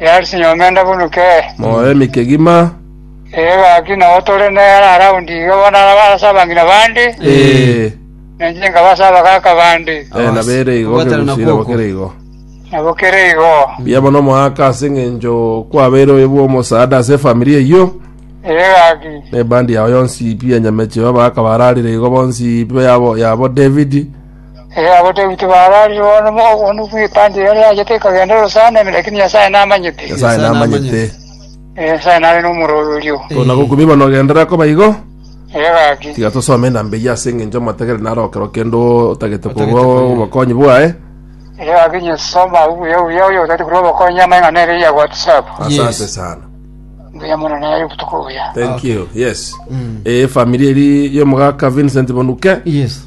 Yarisi nyomende buna kee. Moyo ime kegima. Ee gaki nabo tore nere around iga bono arase abang'ina bande. Ee. Na inche nkaba ase abagaaka bande. Ee nabo ere igo Kobwatana na kegusire bo kwoko. kere igo. Nabo kere igo. Mbuya mono omoaka ase eng'encho kwabeire oyo bw'omosaada ase efamiri eyio. Ee gaki. Na ebandi yao yonsi pi ya nyameche y'abagaaka bararire igo bonsi pi yabo yabo David. Ee, abateguti baararire bono bono bw'ekanisa eria riachete ekagenda orosana, lakini Nyasae namanyete. Nyasae namanyete. Ee, Nyasae nare nomoroberio. Tona gokumi bono ogenderere koba igo. Ee, gaki. Tiga tosome enamba eyio ase eng'encho omotegere naro okero kende otagete korwa obokonyi bwaye. Ee, gaki inye soma abwo buya buya oyo otagete korwa obokonyi amang'ana ere ya WhatsApp. Asante Yes. sana. Mbuya mono naye obotuko buya. Thank you. Yes. Eh, familia eri y'omogaka Vincent Bonuke. Yes.